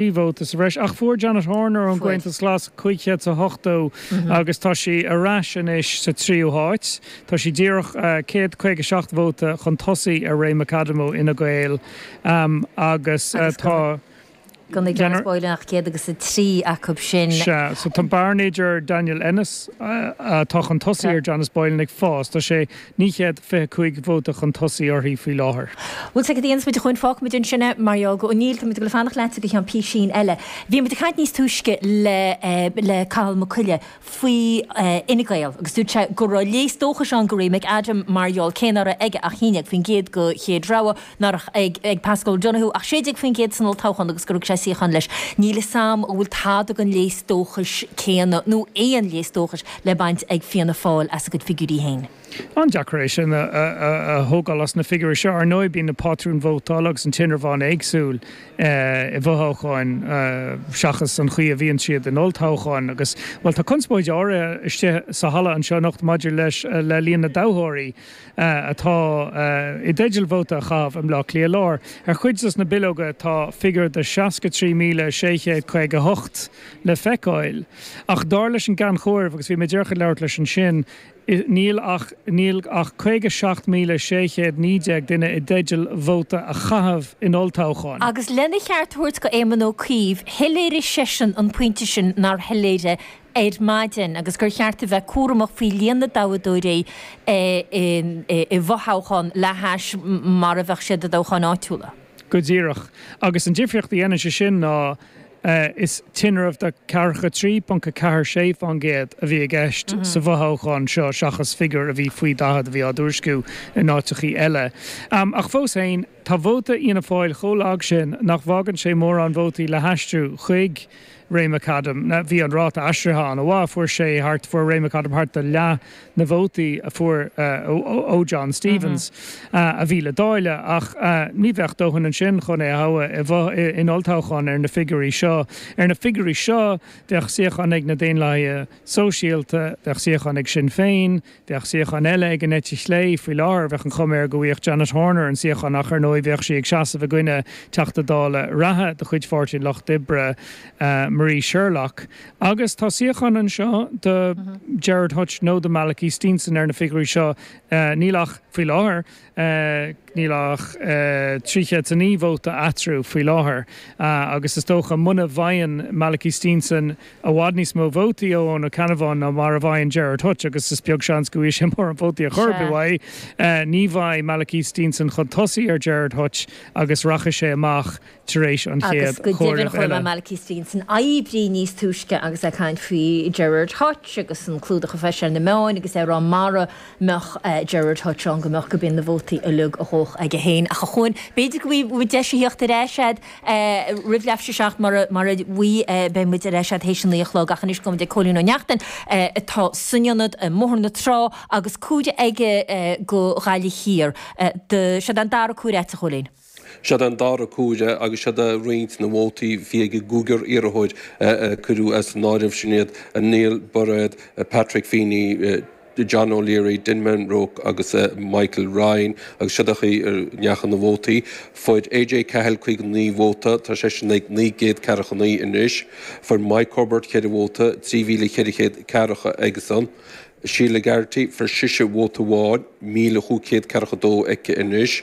Trí vóta sa bhreis. Ach fuair Janet Horner ón gComhaontas Glas 580 agus tá sí ar ais anois sa tríú háit. Tá sí díreach céad caoga seacht vóta chun tosaigh ar Ray McAdam ó Fhine Gael agus tá. Ní bhfuair Janice Boylan ach céad agus a trí acu sin. Sea, so tá bearna idir Daniel Ennis atá chun tosaigh ar Janice Boylan ag fás. Tá sé naoi gcéad fiche cúig vóta chun tosaigh uirthi faoi láthair. Bhuel, sa gcéad aon is muid a chuaigh an fágfaidh muid ansin é, Mario Ó Néill, tá muid ag dul ag fanacht leatsa go ceann písín eile. Bhí muid ag caint níos túisce le, le Cathal Mac Coille faoi Fhine Gael agus dúirt sé go raibh léas dóchais ann do Ray McAdam mar gheall, cé nach raibh aige ach haon déag faoin gcéad de chéad rogha, nach raibh ag Paschal Donohoe ach 16% san olltoghchán agus gur thug sé suíochán leis, níl fhios 'am an bhfuil tada den léas dóchais céanna, nó aon léas dóchais, le baint ag Fianna Fáil as a gcuid figiúirí féin. An-deacair é sin a thógáil as na figiúirí seo. Ar ndóigh, bíonn na pátrúin vótála agus an tinreamh an-éagsúil i bhfothoghcháin seachas an chaoi a bhíonn siad in olltoghcháin agus, bhuel, tá conspóid áirithe istigh sa halla anseo anocht maidir le líon na dtoghthóirí. atá i dteideal vóta a chaitheamh i mBleá Cliath Láir. Ar chuid dos na bileoga tá figiúr de 63,658 le feiceáil. Ach dar leis an gCeann Comhairimh, agus bhí mé díreach ag labhairt leis ansin, níl ach níl ach 57,619 duine i dteideal vóta a chaitheamh in olltoghchán. Agus lena cheart a thabhairt go Éamon Ó Cuív, shoiléirigh seisean an pointe sin an-soiléir ar maidin agus gur cheart a bheith cúramach faoi líon na dtoghthóirí i bhfothoghchán le hais mar a bheadh siad i dtoghcháin áitiúla. Go díreach. Agus an difríocht a dhéanann sé sin ná is tinreamh de 43.46 faoin gcéad, a bhí i gceist sa bhfothoghchán seo seachas figiúr a bhí faoi 40 a bhí á thuairisciú in áiteachaí eile. Ach fós féin, Tá vóta Fhianna Fáil chomh lag sin nach bhfágann sé mórán vótaí le haistriú chuig Ray McAdam. Bhí an ráta aistrithe an-mhaith, fuair sé thart, fuair Ray McAdam thart ar leath na vótaí a fuair ó John Stephens a bhí le dáileadh, ach ní bheadh dóthain ansin chun é a thoghadh in olltoghchán ar na figiúirí seo. Ar na figiúirí seo, bheadh suíochán ag na Daonlathaithe Sóisialta, bheadh suíochán ag Sinn Féin, Bheadh suíochán eile ag an eite chlé. Faoi láthair, bheadh an chuma air go bhfaigheadh Janet Horner an suíochán ach, ar ndóigh, bheadh sí ag seasamh i gcoinne Teachta Dála reatha de chuid Pháirtí an Lucht Oibre, Marie Sherlock. Agus tá suíochán anseo do Gerard Hutch nó do Malachy Steenson ar na figiúirí seo. Níl ach, faoi láthair, Níl ach 309 vóta eatarthu faoi láthair agus is dócha, muna bhfaigheann Malachy Steenson i bhfad níos mó vótaí ó Eoin Ó Ceannabháin ná mar a bhfaigheann Gerard Hutch, agus is beag seans go bhfaighidh sé mórán vótaí ar chor ar bith uaidh, ní bheidh Malachy Steenson chun tosaigh ar Gerard Hutch agus rachaidh sé amach tar éis an chéad chomhairimh eile. Malachy Steenson oibrí níos túisce agus é ag caint faoi Gerard Hutch agus an clúdach a fuair sé ar na meáin agus é ag rá mara mbeadh Gerard Hutch ann go mbeadh gurb in na vótaí uilig a ghabhfadh aige féin. Ach a Chúan, b'fhéidir go bhfaighidh muid deis a theacht ar ais agat roimh leathuair théis a seacht mara mara mbeidh beidh muid ar ais agat théis a naoi a chlog ach anois gabhaimid ag Cóilín Ó Neachtain atá san ionad i mBóthar na Trá agus comhaireamh aige go Ghaillimh Thiar do, seo an dara comhaireamh a'at a Chóilín. Siod é an dara comhaireamh agus siod é roinnt na vótaí a bhí ag an gcúigear iarrthóir a cuireadh as an áireamh, sin iad Néill Bairéad, Patrick Feeney, John O'Leary, Denman Rooke agus Michael Ryan agus siod é an chaoi a ndeachaigh na vótaí. Fuair AJ Cahill 59 vóta, tá seisean ag 900 ceathracha naoi anois. Fuair Mike Cubbard ceithre vóta, 3,400 ceathracha aigesan. Sheila Garrity, fuair sise vóta amháin, 1,500 ceathracha dó aici anois.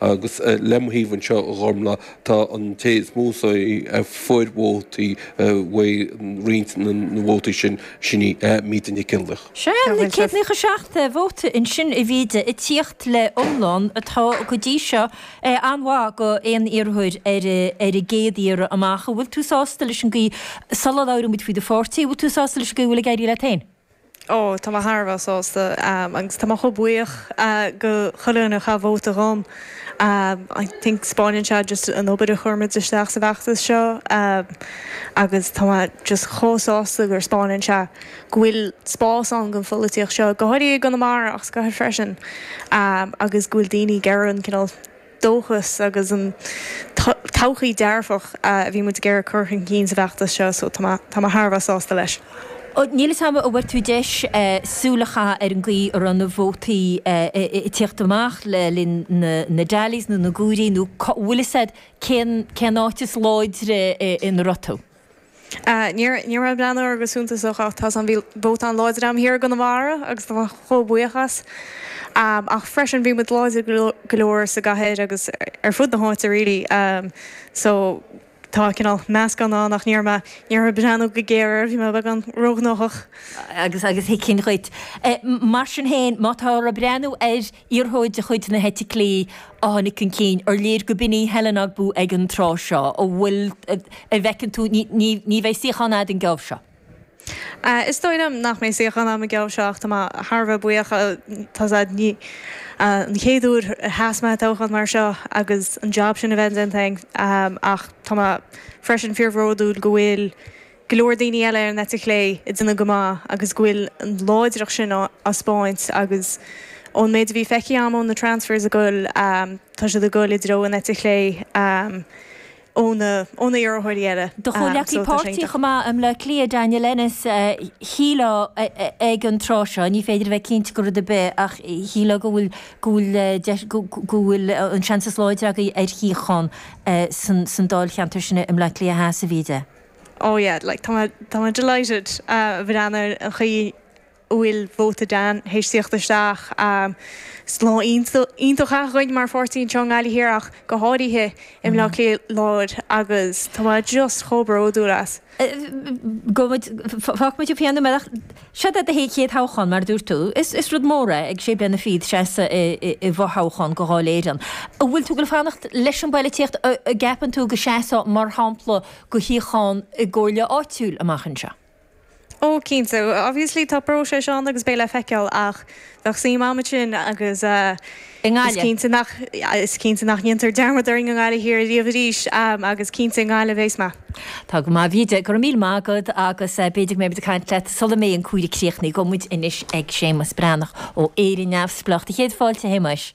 Agus le mo thaobh anseo a Ghormfhlaith, tá an té is mó a fuair vótaí uaidh roinnt na vótaí sin, sin í Míde Nic Fhionnlaoich. Sé céad naocha seacht vóta ansin a Mhíde ag tíocht le iomlán atá go dtí seo an-mhaith go aon iarrthóir ar an gcéad iarraidh amach. An bhfuil tú sásta leis an gcaoi sula labhraímid faoi do pháirtí, an bhfuil tú sásta leis an gcaoi a bhfuil ag éirí leat féin? Ó, tá mé thar a bheith sásta agus tá mé chomh buíoch go chuile dhuine a chaith vóta dhom. I think spáineann sé just an obair a chuir muid isteach sa bhfeachtas seo agus tá mé just chomh sásta gur spáineann sé go bhfuil spás ann don pholaitíocht seo, go háirithe i gConamara ach sa gcathair freisin, agus go bhfuil daoine ag iarraidh an cineál. dóchas agus an todhchaí dearfach a bhí muid ag iarraidh cur chun cinn sa bhfeachtas seo so tá mé thar a bheith sásta leis. Níl fhios agam an bhfuair tú deis súil a chaitheamh ar an gcaoi a raibh na vótaí ag tíocht amach le linn na dtallies nó na gcomhairí nó bhfuil fhios agat cén áit is láidre ina raibh tú? Ní raibh ní raibh mé ag breathnú air go suntasach ach tá's agam bhí vóta an-láidir agam thiar i gConamara agus tá mé chomh buíoch as. Ach freisin bhí muid láidir go leor sa gcathair agus ar fud na háite really so tá cineál meascán ann ach ní raibh, ní raibh mé ag breathnú go géar air, bhí mé beagán róghnóthach. Agus tuigim sin dhuit. Mar sin féin, má táthar ag breathnú ar, Iarrthóir de chuid na heite clé a tháinig chun cinn, ar léir gurb in í Helen Ogbu ag an tráth seo. An bhfuil, a bhfeiceann tú, ní bheidh suíochán agat an geábh seo? Is dóigh liom nach mbeidh suíochán agam an geábh seo ach tá mé thar a bheith buíoch. Tá's agat, is í an chéad uair a sheas mé i dtoghchán mar seo agus an jab sin a bheith déanta agam ach tá mé freisin fíorbhródúil go bhfuil, go leor daoine eile ar an eite chlé ag déanamh go maith agus go bhfuil an láidreacht sin á thaispeáint agus ón méid a bhí feicthe agam ó na transfers ag dul tá siad ag dul i dtreo an eite chlé ó na iarrthóirí eile Do chomhleacaí páirtí chomh maith i mBleá Cliath, Daniel Ennis, shíleá ag an tráth seo, ní féidir a bheith cinnte de rud ar bith ach shíleá go bhfuil go bhfuil go bhfuil an seans is láidre agaibh ar shuíochán san dáilcheantar sin i mBleá Cliath, seans a bhí aige. Oh yeah, like tá mé, tá mé delighted a bhreathnaigh ar an chaoi a bhfuil vóta Dan théis tíocht isteach. Is lá iontach dúinn mar pháirtí anseo i nGaillimh Thiar ach go háirithe i mBleá Cliath Láir agus tá mé just chomh bródúil as. Gabhaimid, fágfaimid an peann a-- an bealach, seo é do chéad thoghchán mar a dúirt tú. Is rud mór é ag sé bliana fichead seasamh i bhfothoghchán do Dháil Éireann. An bhfuil tú ag goil a' fanacht leis an bpoilitíocht, an gceapann tú go seasfá mar shampla, do shuíochán i gcomhairle áitiúil amach anseo? Ó, cinnte. Obviously, tá próiseas ann agus beidh le feiceáil, ach bheadh suim agam ansin agus I nGaillimh? is cinnte nach ndéantar dearmad orainn i nGaillimh Thiar riamh arís agus cinnte i nGaillimh a bheas mé. Tá go maith, a Mhíde. Go raibh míle maith agat agus b'fhéidir go mbeimid ag caint leat sula mbeidh an comhaireamh críochnaithe. Gabhaimid anois ag Séamas Breathnach ó Éire Neamhspleách céad fáilte, a Shéamais.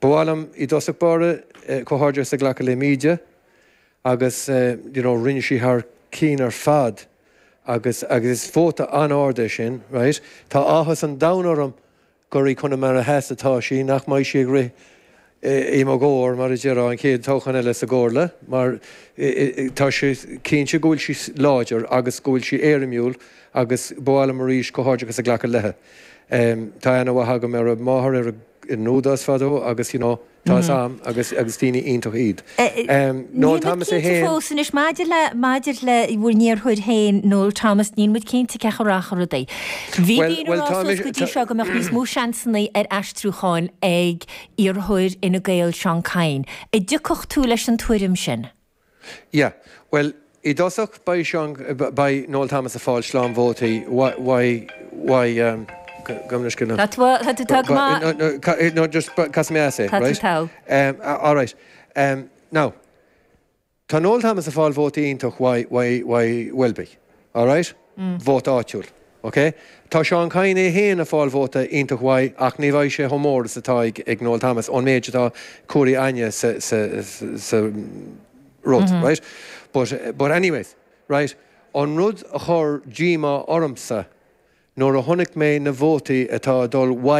Ba mhaith liom i dtosach báire comhghairdeachas a ghlacadh le Míde agus you know rinne sí thar cinn ar fad agus agus is vóta an-ard é sin right. Tá áthas an domhain orm gur i gConamara Theas atá sí, nach mbeidh sí ag rith i mo chomhair mar a déarfá an chéad toghchán eile sa gComhairle mar tá sé cinnte go bhfuil sí láidir agus go bhfuil sí éirimiúil agus ba mhaith liom arís comhghairdeachas a ghlacadh leithe. Tá aithne mhaith agam ar a máthair ar an nÚdarás fadó agus you know tá a fhios 'am agus agus daoine iontach iad. Anois maidir le maidir le bhur n-iarrthóir féin Noel Thomas níl muid cinnte cén chaoi a rachaidh rudaí. Bhí daoine ag rá suas go dtí seo go mbeadh níos mó seansannaí ar aistriúcháin ag iarrthóir Fhine Gael Seán Kyne. An dtiocfadh tú leis an tuairim sin? Yeah. Bhuel, i dtosach, beidh Seán, beidh Noel Thomas ag fáil slám vótaí. Why, why, Tá tú, tá tú, tá go maith. No, no, ca, no, just ba, casadh mé as é, right? Tá tú, tá. Em, all right. Em, now, tá Noel Thomas ag fáil vótaí iontach uaidh, uaidh, uaidh Welby. All right? vóta áitiúil. Ok. Tá Seán Kyne é féin a' fáil vóta iontach mhaith ach ní bheidh sé chomh mór is atá ag ag Noel Thomas ón méid atá comhairthe inniu sa sa sa rud, right? But but anyways, right, an rud a chuir díomá ormsa nuair a chonaic mé na vótaí atá ag dul